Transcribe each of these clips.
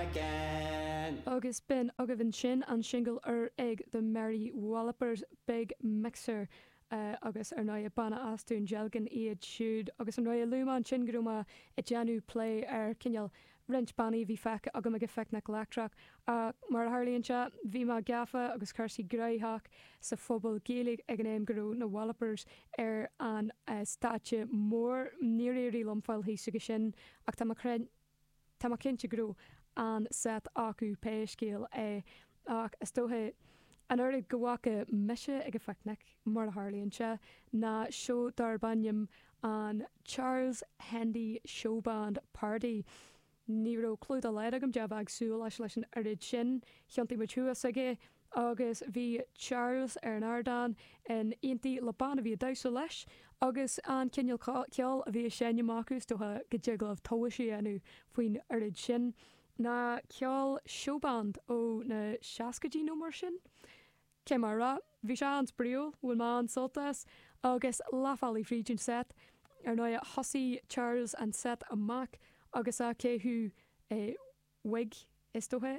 again! Agus b'in agaibh ansin an singil úr ag The Mary Wallopers, Big Mixer, agus ar ndóigh banna as Dún Dealgan iad siúd agus ar ndóigh luaigh mé ansin go raibh mé ag déanamh plé ar cineál roinnt bannaí a bhí feicthe agam ag an Phicnic Leictreach ach mar a tharlaíonn sé bhí mé gafa agus cúrsaí gnoitheach sa Phuball Gaeilge ag an am go raibh na Wallopers ar an stáitse mór. Níor éirigh liom fáil thuas acu sin ach tá mé Tá mé cinnte go raibh an-set acu pé scéal é, ach is dóiche an oiread go bhfaca mise ag an phicnic, mar a tharlaíonn sé, ná seó darb ainm an Charles Hendy Showband Party. Ní raibh clú dá laghad agam cad é a bheith ag súil leis leis an oiread sin. Thiontaigh muid thuas aige. agus bhí Charles ar an ardán in éindí le bean a bhí ag damhsa leis agus an cineál ceoil a bhí ag seinm acu, is dócha go dtig libh tomhais a dhéanamh faoin oiread sin ná ceol showband ó na seascaidí nó mar sin. Cé mar a raibh, bhí sé an-spraíúil, bhain mé an-sult as, agus leathbhealaigh fríd an set, ar ndóighe, thosaigh Charles an set amach agus é ag caitheamh wig, is dócha,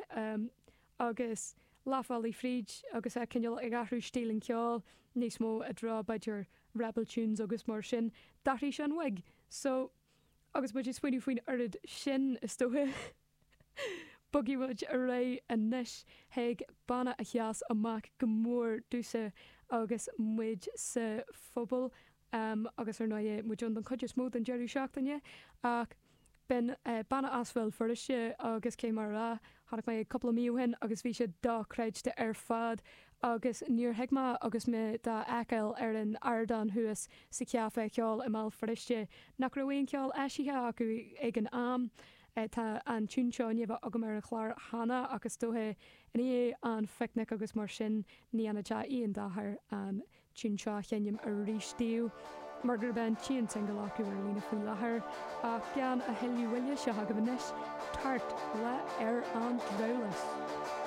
agus leathbhealaigh fríd agus é cineál ag athrú stíl an cheoil níos mó i dtreo b'fhéidir rebel tunes agus mar sin, d'athraigh sé an wig. So, agus muid ag smaoineamh faoin oiread sin, is dócha, bogfaidh muid ar aghaidh anois chuig banna a sheas amach go mór domhsa agus muid sa phuball Am agus, ar ndóigh, muid ann don chuid is mó den deireadh seachtaine. Ach b'in banna as Bhéal Feirste agus cé mar a. Chonaic mé iad cúpla mí ó shin agus bhí siad dochreidte ar fad. Agus níor thuig mé agus mé dá fheiceáil ar an ardán thuas sa chaifé cheoil i mBéal Feirste nach raibh aon cheol eisithe acu ag an am. Tá an tiún seo i ndiaidh a bheith agam ar an chlár cheana ach is dóiche i ndiaidh an phicnic agus mar sin ní dhéanfadh sé aon dochar an tiún seo a sheinm arís díobh mar gurb é an t-aon singil acu ar líne faoi láthair ach gan a thuilleadh moille seo agaibh anois, Tart le Ar an Drabhlás.